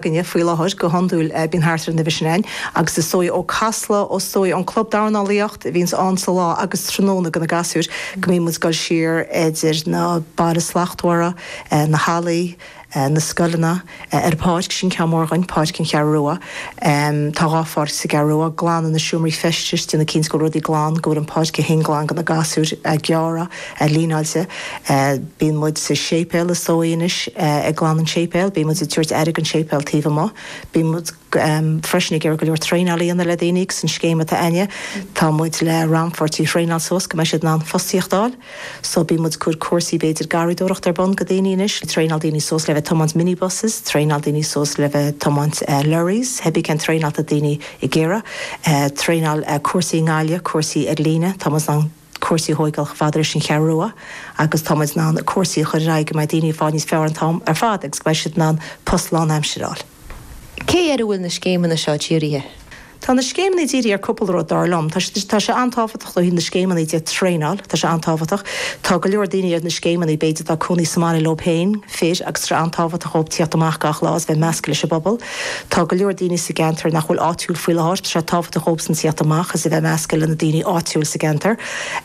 againne faoi láthair, go hiondúil bíonn thart ar an uimhir sin ann, agus is dóigh ó Casla, ó is dóigh an club dornálaíocht a bhíonns ann sa lá agus tráthnóna do na gasúir, go mbíonn muid ag dul siar idir na Bailte Slachtmhara, na hallaí, na scoileanna, ar an pháirc sin ceann mór againn, Páirc an Cheathrú Rua. Tá dhá pháirc sa gCeathrú Rua. Glanadh na seomraí feistis déanamh cinnte go bhfuil rudaí glan, go bhfuil an páirc é féin glan do na gasúir, gearrtha. a líneáilte. Bíonn muid sa séipéal is dóigh anois, ag glanadh an tséipéil, bíonn muid ag tabhairt aire don séipéal taobh amuigh. Bíonn muid freisin ag iarraidh go leor traenáil a dhéanamh le daoine agus an scéim atá a'ainne, tá muid le rannpháirtithe a thraenáil suas go mbeidh siad in ann fostaíocht a fháil. So bíonn muid ag cur cúrsaí b'fhéidir garraíodóireacht ar bun go daoine anois, traenáil daoine suas le bheith tiomáint minibuses, traenáil daoine suas le bheith tiomáint lorries, theibí cén traenáil atá daoine ag iarraidh. Traenáil cúrsaí i nGaillimh, cúrsaí ar líne, tá muid in ann. cúrsaí a thóigeáil chomh fada leis an Cheathrú Rua agus tá muid in ann cúrsaí a chur ar aghaidh go mbeidh daoine ag fáil níos fearr an t-am ar fad agus go mbeidh siad in ann post lánaimsire a fháil. Cé air a bhfuil na scéimeanna seo dírithe? Tá na scéimeanna dírithe ar cúpla rud, dar liom. Tá sé, tá sé an-tábhachtach ó thaobh na scéimeanna de, traenáil, tá sé an-tábhachtach. Tá go leor daoine ar na scéimeanna, b'fhéidir atá cónaí sa mbaile leo féin, fir, agus tá sé an-tábhachtach dhóibh tíocht amach gach lá agus bheith measctha leis an bpobal. Tá go leor daoine sa gceantar nach bhfuil áitiúil faoi láthair. Tá sé tábhachtach dóibhsan tíocht amach is a bheith measctha le na daoine áitiúil sa gceantar.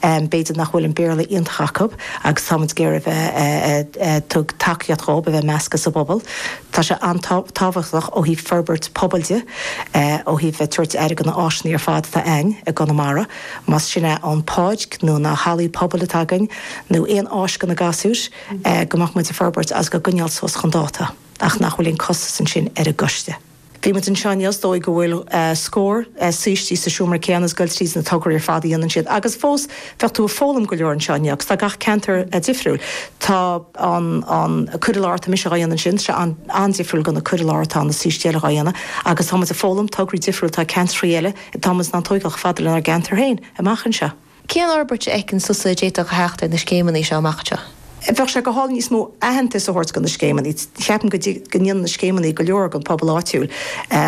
B'fhéidir nach bhfuil an Béarla iontach acu agus táimid ag iarraidh bheith ag tabhairt tacaíocht dhóibh a bheith measctha sa bpobal. Tá sé an-tábhachtach ó thaobh forbairt pobail de, ó thaobh bheith tabhairt aire go na áiseannaí ar fad atá a'ainn i gConamara, más sin é an páirc nó na hallaí pobail atá againn nó aon áis go na gasúir, go mbeadh muid ag forbairt agus dhá gcoinneáil suas chun dáta. ach nach bhfuil aon costas ansin ar an gcoiste. Bhí muid anseo inniu is dóigh go bhfuil scór saoistí sa seomra céanna is ag goil tríd na tograí ar fad a dhéanann siad agus fós bheadh tú ag foghlaim go leor anseo inniu agus tá gach ceantar difriúil. Tá an an cur i láthair atá mise dhá dhéanamh ansin, tá sé an-difriúil go na cur i láthair atá na saoistí eile dhá dhéanamh agus tá muid ag foghlaim tograí difriúil, atá ceantraí eile, tá muid in ann tóigeáil chomh fada lenár gceantar féin amach anseo. Cén fhorbairt a fheiceann tusa a d'fhéadfadh a theacht ar na scéimeanna seo amach anseo? Bheadh sé go hálainn níos mó aitheantais a thabhairt do na scéimeanna. Ceapaim go ndéanann na scéimeanna go leor don phobal áitiúil.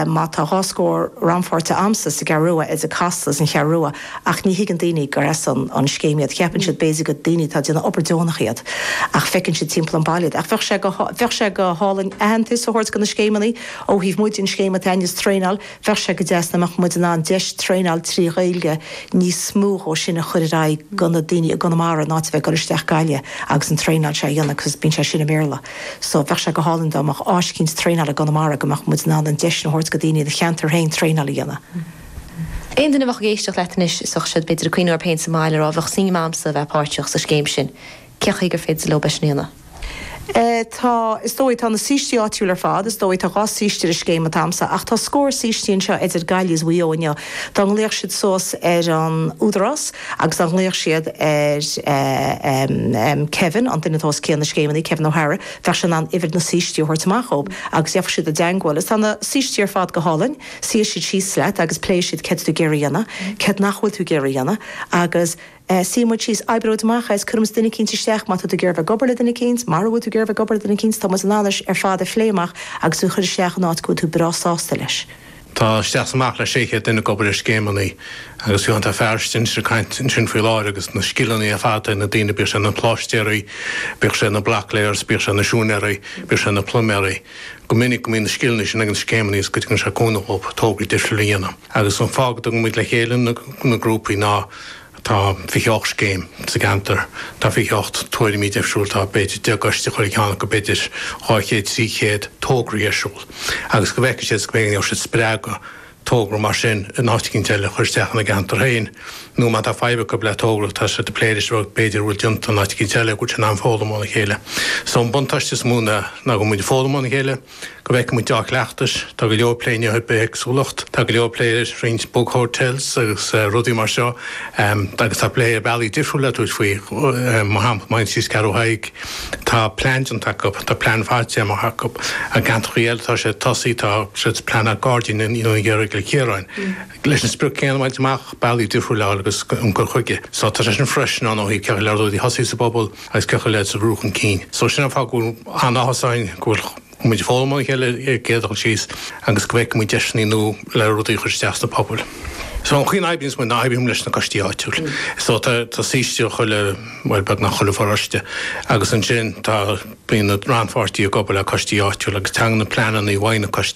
Má tá dhá scór rannpháirtithe a'amsa sa gCeathrú Rua, idir Casla is an Cheathrú Rua, ach ní thuigeann daoine gur as an scéim iad. Cheapann siad b'fhéidir gur daoine atá ag déanamh obair deonach iad, ach feiceann siad timpeall an bhaile iad. Ach bheadh sé go, bheadh sé go hálainn aitheantais a thabhairt do na scéimeanna ó thaobh muid den scéim atá inniu sa traenáil. Bheadh sé go deas dá mbeadh muid in ann deis traenáil trí Ghaeilge níos mó dhó sin a chur ar aghaidh go na daoine i gConamara in áit a bheith ag dul isteach Gaillimh agus an traenáil seo a dhéanamh cos bíonn sé sin i mBéarla. So, bheadh sé go hálainn dá mbeadh áis eicínt traenáil i gConamara go mbeadh muid in ann an deis sin a thabhairt go daoine ina cheantar féin traenáil a dhéanamh. Aon duine a bheadh ag éisteacht leat anois is bheadh siad b'fhéidir ag cuimhneamh orthub fhéin sa mbaile ag rá bheadh suim agamsa a bheith páirteach sa scéim sin. Cé chaoi gur féidir leo bheith ar scéimeanna? Tá, is dóigh. Tá na saoistí áitiúil ar fad, is dóigh. Tá dhá shaoiste ar an scéim an t-am seo. Ach tá scór saoistí anseo idir Gaillimh is Maigh Eo inniu. Dá nglaofadh siad suas ar an Údarás agus dá nglaofadh siad ar Kevin, an duine atá os cionn na scéimeanna, Kevin O'Hara, bheadh sé in ann uimhir na saoistí a thabhairt amach dhób agus gheofadh siad i dteagmháil. Is tá na saoistí ar fad go hálainn. Suífidh siad síos leat agus pléifidh siad céard tá tú ag iarraidh a dhéanamh, céard nach bhfuil tú ag iarraidh a dhéanamh agus. Eh, suíonn muid síos, oibreoidh muid amach é is cuirfidh muid duine eicínt isteach, má tá tú ag iarraidh bheith ag obair le duine eicínt, mara bhfuil tú ag iarraidh bheith ag obair le duine eicínt, tá muid in ann é ar fad a phlé amach agus tú a chur isteach in áit go bhfuil tú breá sásta leis. Tá isteach is amach le 600 duine ag obair ar scéimeanna agus fiú an fear seo anois ag caint ansin faoi láthair agus na scileanna ar fad ag na daoine, bíodh sé ina pláistéaraí, bíodh sé ina block layers, bíodh sé ina siúinéaraí, bíodh sé ina pluiméaraí. Go minic go mbíonn na scileanna sin ag na scéimeanna agus go dtugann sé cúnamh dhóibh tograí difriúla a dhéanamh. Agus an fáth go dtugann muid le chéile na, na grúpaí ná, Tá 28 scéim sa gceantar. Tá 28 tuairimí difriúil, tá b'fhéidir 10 gcoiste ag chuile cheann acu, b'fhéidir 200, 300 tograí ar siúl. Agus go bhfeicfidh siad is go mbeidh siad spreagtha togra mar sin in áit eicínt eile a chur isteach ina gceantar féin. Nó má tá fadhb acu le togra tá siad ag plé leis b'fhéidir go bhfuil déanta in áit eicínt eile, go bhfuil siad in ann foghlaim óna chéile. So an buntáiste is mó ná go mbíonn foghlaim óna chéile, Go bhfeicfidh muid dea-chleachtais, tá go leor plé inniu ar bithéagsúlacht, tá go leor plé ar roinnt bug hotels agus rudaí mar seo, agus tá plé ar bhealaí difriúla le tabhairt faoi, mar shampla, má théann tú síos Ceathrú Thaidhg, tá plean déanta acu, tá plean faighte amach acu. I gceantrachaí eile tá sé tosaithe, tá siad ag pleanáil gairdín a dhéanamh thiar i gCill Chiaráin. Leis an sprioc céanna a bhaint amach, bealaí difriúil a fháil agus an cur chuige seo, tá sé sin freisin ann ó thaobh cén chaoi le rud a thosú sa bpobal agus cén chaoi le rud a bhrú chun cinn. So sin an fáth go bhfuil an-áthas orainn go bhfuil muid ag foghlaim óna chéile ar an gcéad dul síos agus go bhfeicfidh muid deiseanna nua le rudaí a chur isteach sna pobail. So an chaoi a n-oibríonns muid ná oibríonn muid leis na coistí áitiúil. So tá saoiste i chuile, bhuel beagnach chuile pharóiste agus ansin tá, bíonn na rannpháirtithe ag obair le coistí áitiúil agus tagann na pleananna i bhfeidhm na coistí.